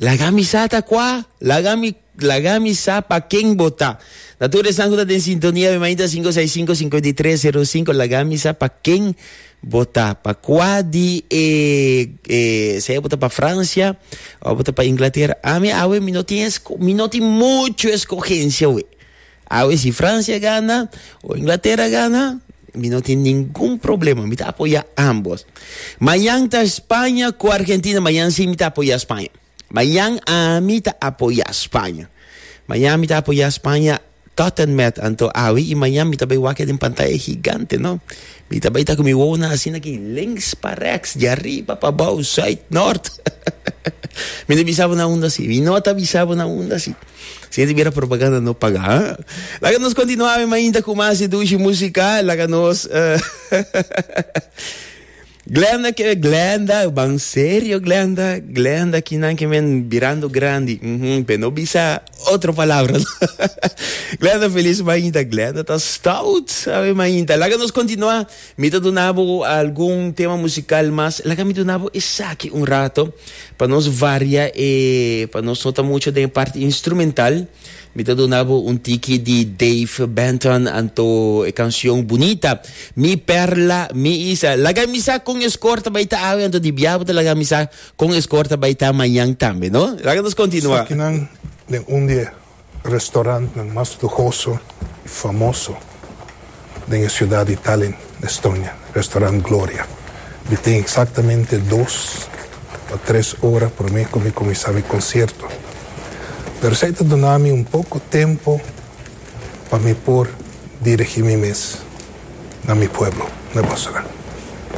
Laga mi sa ta kua, laga mi laga mi sa pa ken bo ta. Na tur esnan ku ta den sintonia mi mainta sinku seis sinku sinku di tres seru sinku laga mi sa pa ken bo ta pa kua di e e sea bo ta pa Francia o bo ta pa Inglaterra ami awe mi no tin esko mi no tin muchu eskogensia we. Awe si Francia gana o Inglaterra gana mi no tin ningun problema mi ta apoya ambos. Mañan ta Spanja cu Argentina mañan si mi ta apoya Spanja. Mañan ami ta apoya Spanja. Mañan mi ta apoya Spanja tot en met anto awe y mañan mi ta bay wak den pantaya gigante no. Mi ta bay ta cu mi wowonan asina aki links pa rex di arriba pa bao zuid nort. mi no bisa bo na unda si mi no ta bisa bo na unda si. Si hende mira propaganda no paga ha. Laga nos continua mi mainta cu mas dushi musica laga nos Glenda que Glenda ban serio Glenda Glenda ki nan que men birando grandi mm -hmm. pe no bisa otro palabra Glenda feliz mainta Glenda ta stout sabe mainta laga nos continua Mi ta duna bo algun tema musical mas, laga mi duna bo esaki un rato pa nos varia e, pa nos no ta mucho den e parti instrumental. Mi ta duna bo un tiki di Dave Benton anto e cancion Bunita, Mi perla, mi isa. Laga mi sa con e score ta bay ta awe anto di bia bo ta laga mi sa con e score ta bay ta mañan tambe, no? Laga nos continua. Esakinan den un di e restaurantnan mas luhoso i famoso den e siudat di Tallinn, Estonia, Restaurant Gloria. Mi tin eksaktamente dos ta tres ora promé ku mi kuminsá mi konsierto. Pero esei ta duna mi un poko tempu pa mi por dirigí mi mes na mi pueblo, na Bòswera.